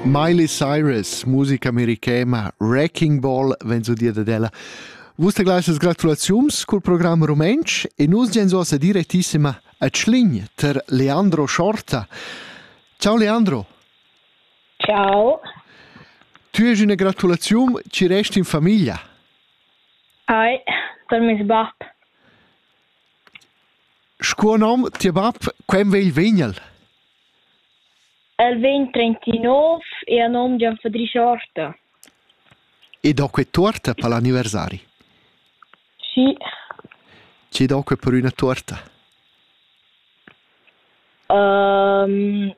Miley Cyrus, musica americana, Wrecking Ball vegn su dir dad ella. Vus te gleisas gratulaziums cul program rumentsch e nus gen so sa direttissima a Tschlin ter Leandro Schorta. Ciao Leandro. Ciao. Tu hai una gratulazione, ci resti in famiglia. Ai, sono mio bab. Scuo nom, tia bab, quem vegl vegnel? El vegn trentinov e ha nom Gian Fadri Schorta. E do que tuorta per l'anniversari? Schi. Chi do que per üna tuorta? Um,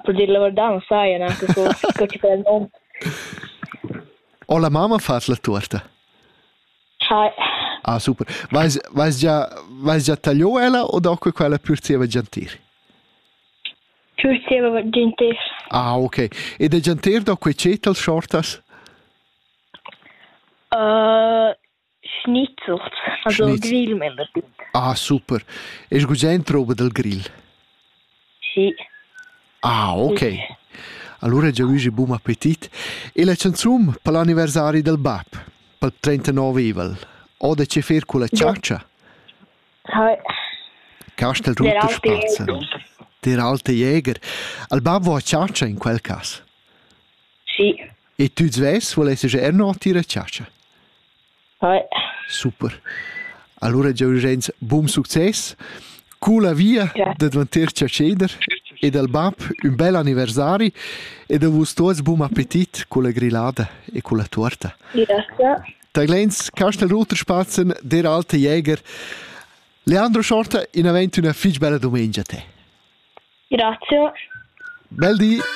per dir la verità non sai neanche co, co ci fa il nome. O la mamma fa la tuorta? Hai. Ah, super. Vais, vais, già, vais già tagliò ella o do que quella pür zieva giantir? Cheu steva il gentar. Ah, okay. Ed il gentar da quei tschet als schortas? Uh, Schnitzert, also Schnitz. Grill mein das. Ah, super. Ist gustend roba del grill? Sì. Ah, okay. Sì. Allora già oggi buon appetit. E la canzone per l'anniversario del bab, per il 39 eval, o da che fer con la ciaccia? Castel Rutter Spazzaron. Diralta Jäger. Al ban vo a chatscha in quel cas? Sì. E tu svess volessi già erno tira chatscha? Ja. Super. Allora Giorgenz, buon succes. Cu la via ja. da dvanter Chacheder e dal bab un bel anniversari e da vus tuots buon appetit con la grillada e con la torta. Grazie. Taglens, Castel Ruterspatzen, der alte Jäger. Leandro Schorta, in avent una fitch bella domenica a te. Grazie. Bel di.